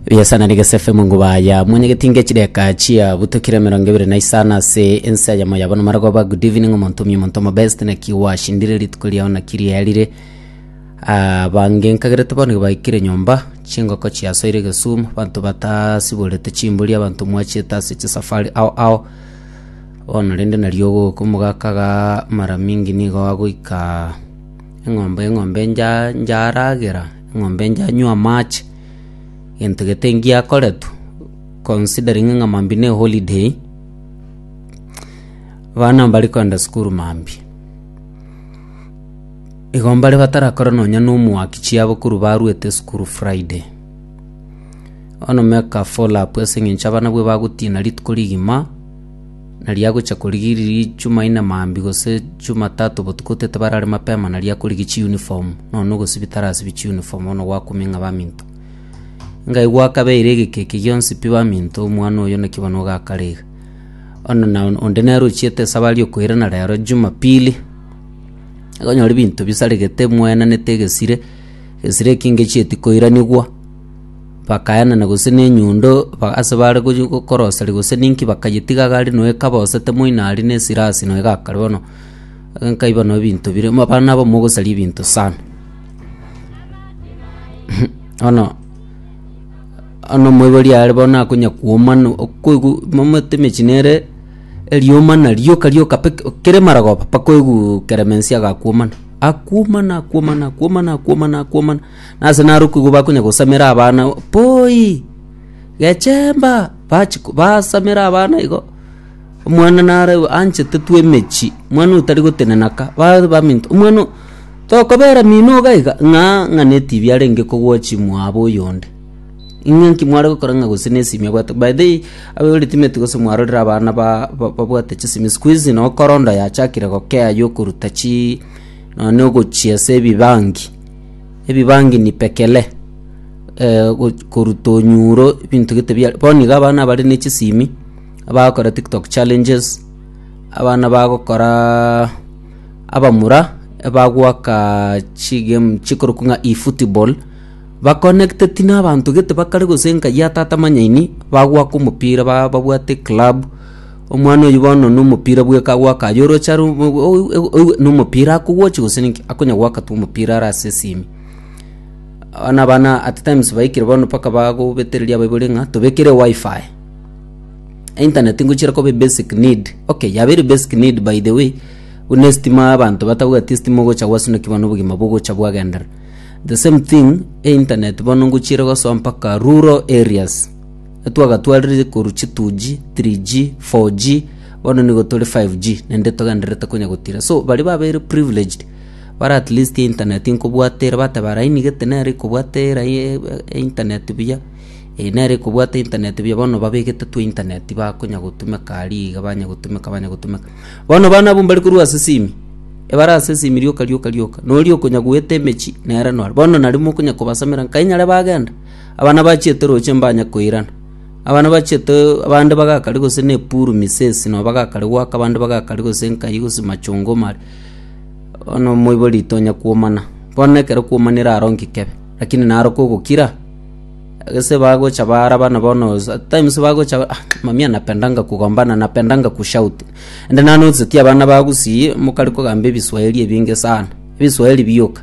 Biasana ni gesefe mungu baya mwenye getinge chideka chia butokire mirongo ibere na isano ase ense ya moya bono marogoba good evening omonto omi omonto omo best na kiwa shindire rituko riao na kiria yarire Ah, bange nkagerete bono baikire nyomba chingoko chiasoire egesumu banto batasiborete chimbori abanto mwachete ase chisafari ao ao bono rende nario ogoka omogaka ga mara mingi nigo agoika Eng'ombe, eng'ombe njaragera, eng'ombe njanywa amache, gento gete ngiakoretwe, considering ng'a mambia ne holiday, abana mbare kogenda sukuru mambia. Igo mbare batarakora nonya na omwaki chiabo korwa barwete esukuru friday. Bono make a follow up ase eng'encho abana bwo bagotina rituko rigima. na riagochia korigiria Rijumaine mambia gose Jumatatu botuko totabarare mapema na riakorigia chiuniform, nonya na ogosibia tarasibia chiuniform bono gwakumia ng'a baminto. Ngai gwakabeire egeka eke gionsi pi baminto, omwana oyo naki bono ogakare iga. Bono na onde nere ochiete esabari okoirana rero Jumapili, nigo onyore ebinto bisaregete mwaenanete egesire, egesire eki ngechieti koiranigwa. Bakayanana gose nenyundo ase baare gochia koroseria gose ninki bakayetiga agaaria noyo ekaba osete moino aria ne esirasi noyo egakare bono nkaiba noyo ebinto bire abana aba mogosaria ebinto sana. Bono bono omoibori are bono akonya kwoma no okoigwa momanyete emechi nere erioma narioka rioka pi kere marogoba mpaka oigwe keremensi agakwomana akwomana akwomana akwomana akwomana akwomana. Nase narokigwe bakonya gosamera abana poi, gechemba, bachi basamera abana igo, omwana nare anchete tu emechie, omwana oyo tari gotenena ka, bare baminto, omwana oyo tokobera mino iga iga ng'a ng'a ne etibi arenge kogwa chimwaabo oyonde. Ing'e nki mware gokora ng'a gose ne esimi abwate, by the way abe ore timeti gose mwarorire abana ba ba babwate chisimi sikuizi no korondo yachakire gokea yokoruta chii nonye ogochia ase ebibangi. ebibangini pekele, koruta onyuro ebinto gete biare, bono iga abana bare ne chisimi abagokora tiktok challenges, abana bagokoraa abamura ebagwaka chigame chikorokwa ng'a efootball, baconnecteti na abanto gete bakare gose enka ya tata manyaini bagwaka omopira ba babwate eclub. Omwana oyio bono nomopira bweka agoaka aye oroche are nomopira akogochi gose ninki akonya goaka tu omopira are ase esimi abana abana at times baikire bono mpaka bagobetereria abaibori ng'a tobekere wifi internet ngochira koba ebasic need okay yaba ere basic need by the way buna estima abanto batabwati estima ogocha gwaswa naki bono obogima bogocha bwagenderera the same thing internet bono ngochire gosoa mpaka rural areas. na twagatwaririe korwa chi 2G, 3G, 4G, bono nigo tore 5G, naende togendererete konya gotira. So, baria babeire privileged, bare at least internet nkobwata ere, bateba laini gete nere ekobwata erai- e- e- internet buya, eh, nere ekobwata internet buya, bono babegete twa internet bakonya gotumeka aria iga, banya gotumeka banya gotumeka. Bono bana abwo mbare korwa ase esimi, ebare ase esimi rioka rioka rioka, noria okonya goeta emechie, nere nore. Bono naria mokonya kobasamera, nkai nyare bagenda. Abana bachiete roche mbanye koirana. Abana bachiete abande bagakare gose nepuru misesi nabo bagakare goaka abande bagakare gose nkai gose machongo mare. Bono moibori tonya kuomana. Bono ekero kuomanire aro nki kebe. Lakini naro kogokira gese bagocha baraba na bono at times bagocha ah mami anapendanga kugombana anapendanga ku shout. Ande nanotice ti abana ba Gusii mokare kogamba ebiswahili ebinge sana. Ebiswahili bioka.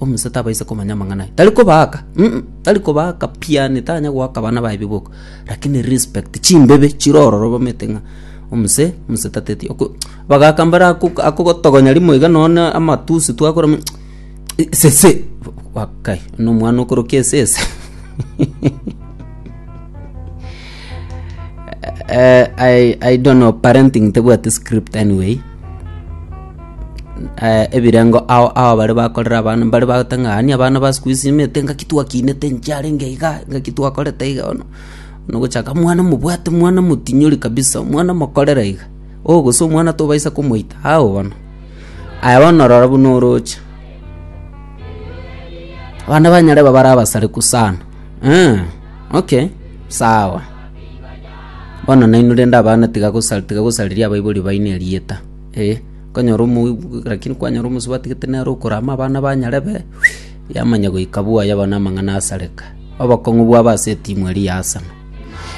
Omonsa tabaisa komanya amang'ana aye. Tari kobaaka. Mm, tari kobaaka piani, tanya goaka abana baye biboko. Lakini respect, chimbebe chire ororo bamete ng'a omonse, omonse tateti. Oko abagaka mbare ako akogotogonya rimo iga nonya na amatusi twakora mm esese wakai, buna omwana okorokia esese. Eh, I, I don't know, parenting tebwati script anyway. eh, ebirengo ao ao bare bakorera abana mbare bagoteba ng'a ani abana ba siku hizi imete ngaki twakinete inche arenge iga ngaki twakorete iga bono bono gochaka mwana mobwate mwana motinyori kabisa omwana mokorere iga oh gose omwana tobaisa komoita ao bono aye bono rora buna oroche abana ba nyarebe bare abasareku sana eh, okay sawa bono nainwe rende abana tiga gosa tiga gosareria abaibori baino erieta Ee, nkanyora omogwekwa, lakini kwanyora omosubati tagete nere okorama abana ba Nyarebe, yamanya goika bwaya bono amang'ana asareka. Obokong'u bwabo ase etimu eria ya Aseno.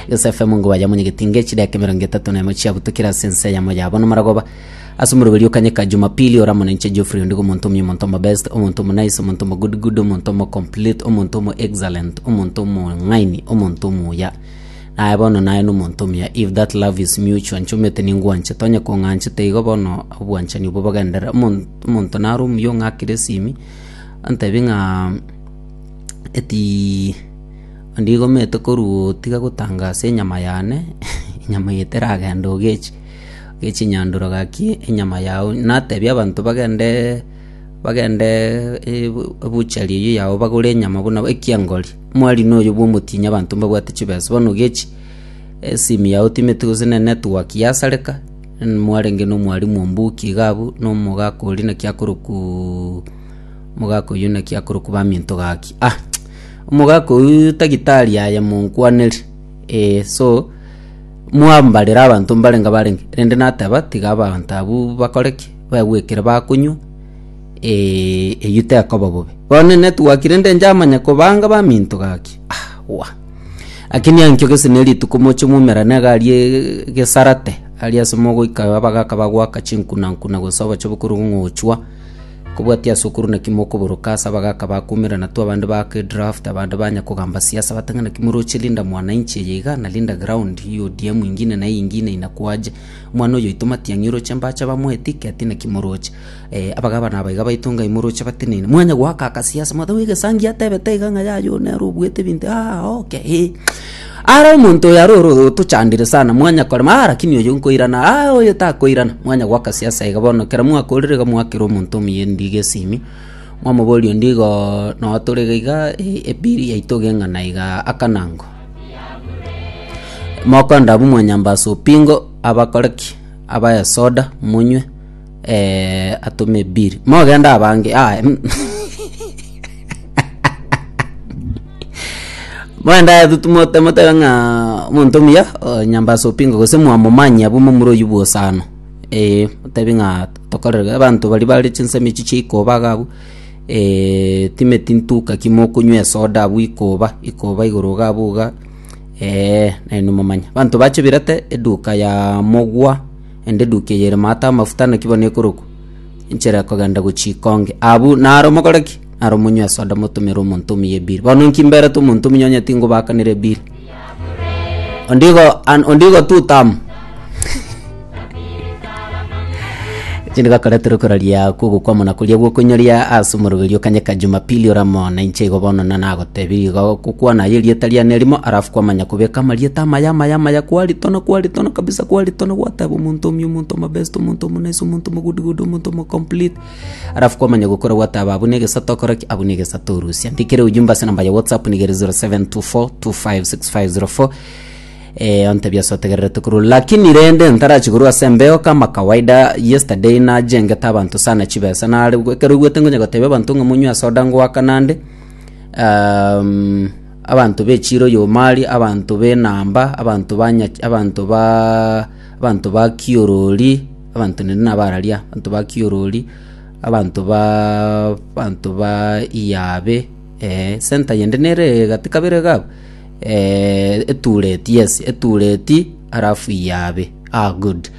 Gese FM ngo bayamonyegeti inga echidaka emerongo etato na emo chiabutukire ase ense yamo ya bono maragoba. Ase omoroberi o Kanyika Jumapili oramo na inche Geoffrey Ondigo omonto omuya omonto omo best, omonto omo nice, omonto omo good good, omonto omo complete, omonto omo excellent, omonto omong'aini, omonto omuya. Aye bono naye nomonto omuya, if that love is mutual, nchomete ningwanchete, onye kong'anchete igo bono obwanchani obwo bogenderere. Omon- Omonto naro omuya ong'akire esimi, ontebie ng'a etiiih ndigomete korwa otiga gotanga ase enyama yane, enyama eye teragenda ogechi ogechi nyandoro gaki enyama yago, natebia abanto bagendeee bagendeee ebu- ebuchari eyio yao bagore enyama buna ekiengori. Mwari noyo bw'omotinyia abanto mbabwate chibesa, bono gechi esimi yao timeti gose ne network yasareka, mwarenge nomwari mwombuki iga abwo na omogaka oria naki akorokwa omogaka oyio naki akorokwa Baminto gaki. Ah omogaka oyio tagi tari aye monkwaneri eh so mwambarera abanto mbarenge barenge rende nateba tiga abanto abwo bakore ki? Begwekere bakonywa Eyio tekoba bobe. Bono netwakire nde njamanya kobanga baminto gaki. Ah, wa. Lakini ankio gese ne rituko moche mumerane agari gesarate. Ari ase mogoika abagaka bagwaka chinkuna nkuna gose obochobo kore ong'ochwa. Kobwati ase okuru naki mokoboroka ase abagaka bakumerana tu abande baake draft abande banya kogamba siasa bate ng'a naki moroche Linda Mwananchi eye iga na Linda Ground eye ODM ingine na eye ingine inakwaje. Omwana oyoito Matiang'i oroche mbache bamoetike ati naki moroche. Abagabana aba iga baito Ngai moroche batenene, mwanya goaka akasia ase motwe bw'egesangi atebete iga ng'a yaya oo nere obuete ebinto aa oke ee. Ara omonto oyo aroro otochandire sana mwanya korema aa lakini oyo nkoirana aa oyo takoirana mwanya goaka siasa iga bono kera mwakorire iga mwakera omonto omuya endigo esimi mwamoboria onde igo noo tore iga iga ee ebiri yaito geng'ana iga akanango. Mokonde abwo mwanyambasa opingo abakore ki? Abae esoda monywe. Eh, atome biri. Mogende abange. Ah, em. Mwenda yetu tumote motebe ng'a omonto muya o, nyamba ase opingo gose mwamomanya abwo momura oyio bwosano. Eh, motebe ng'a tokorere abanto baria bare chinsemo echi chia ikoba iga abwo. Eh, time tintuka ki mokonywa esoda abwo ikoba, ikoba igoro iga abwo iga. Eh, nainwe momanya. Abanto bache birete eduka ya mogwa. Naende eduki eye ere maata amafuta naki bono ekorokwa Enchera Ekogenda Gochia Ikonge. Abwo naro mogore ki? Naro monywe esoda motomere omonto omuya ebiri. Bono inki mberete omonto omuya onye tingobakanera ebiri? Ondigo an, ondigo tu tam. Eki nigakoretera okoraria kw'ogokwama na koria gw'okonyoria ase omorogeri o kanya ka Jumapili ore amo na inche igo bono na nago Tebiiga gokwana aye erieta riane erimo arafu kwamanya kobeka amarieta amaya amaya amaya kwaritana kwaritana kabisa kwaritana gwateba omonto omya omonto omobest omonto omonaice omonto omogudugudu omonto omocomplete arafu kwamanya gokora gwateba abwo negesato okore ki abwo negesato orusia ndikere ujumbe ase enamba ya whatsapp niga ere 0724256504 ontebie ase otegererete korwa lakini rende ntarachie korwa ase embeo kama kawaida yesterday nachengete abanto sana chibesa nare ekero oigwete ngonya gotebia abanto ng'a monywe soda ngoakana nde. um, abanto be chiro yomari abanto b'enamba abanto banya abanto ba abanto ba kiorori abanto nende nabararia abanto ba kiorori abanto ba abanto ba iyabe eh, senta yende nere gati kabere iga abwo eh, etureti yes etureti halafu iyabe ah, good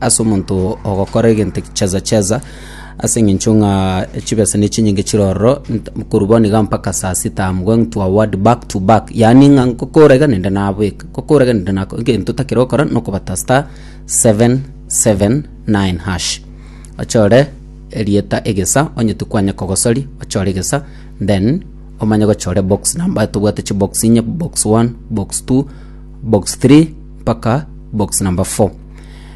ase omonto ogokora egento cheza cheza, ase eng'encho ng'a chibesa ne chinyinge chire ororo, nt- korwa bono iga mpaka saa sita I'm going to award back to back, yaani ng'a nkokora iga naende nabweka, nkokora iga naende nako, egento otakire gokora nokobata star seven seven nine hash. Ochore erieta egesa onye tikwanya kogosori, ochore egesa then omanye gochora ebox number tobwate chibox inye, box one, box two, box three mpaka box number four.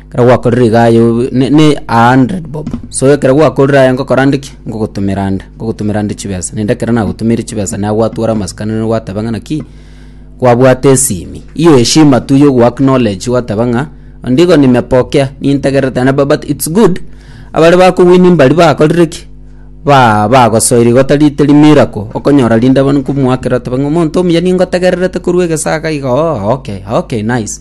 Ekero gwakorire iga aye obe ne- ne a hundred bob, so ekero gwakorire aye ngokora nde ki, ngogotomera nde, ngogotomera nde chibesa. Naende ekero nagotomeire chibesa naye gwatwora amasikani nere gwateba ng'a naki, kwabwate esimi, hiyo heshima tu ya ogo acknowledge gwateba ng'a ondigo nimepokea, nintegererete naende bu- but it's good abare bakowini mbari bakorire ki, ba bagosoeire igo tari teri miracle, okonyora rinde abana nkomoakera oteba ng'a omonto omuya ningotegererete korwa egesaga iga oo okay okay nice.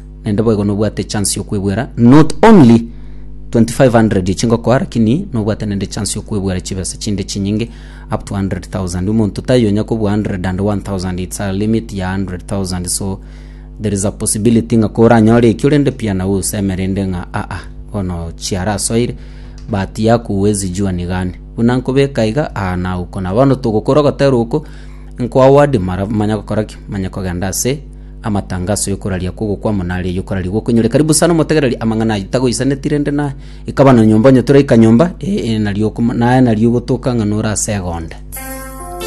naende boigo nobwate chance yokwebwera not only 2500 echi ngokoa lakini nobwate naende chance yokwebwera chibesa chinde chinyinge up to 100000 omonto taiyo onya kobua 100 and 1000 it's a limit ya 100000 so there is a possibility ng'a koranyore ekio rende pia nawe oseme rende ng'a aa bono chiarasoire but yaku huwezi jua ni gani buna nkobeka iga aa naukona bono togokora ogotera oko nkoa word mara manya gokora ki manya kogenda ase Amatangaso y'okoraria kw'ogokwama nare y'okoraria gw'okoinyora ekaribu sana omotegereri amang'ana ayio tagoisaneti rende na ikaba na nyomba onye toraika nyomba ee nario okoma naye nario ogotoka ng'a nore ase egonde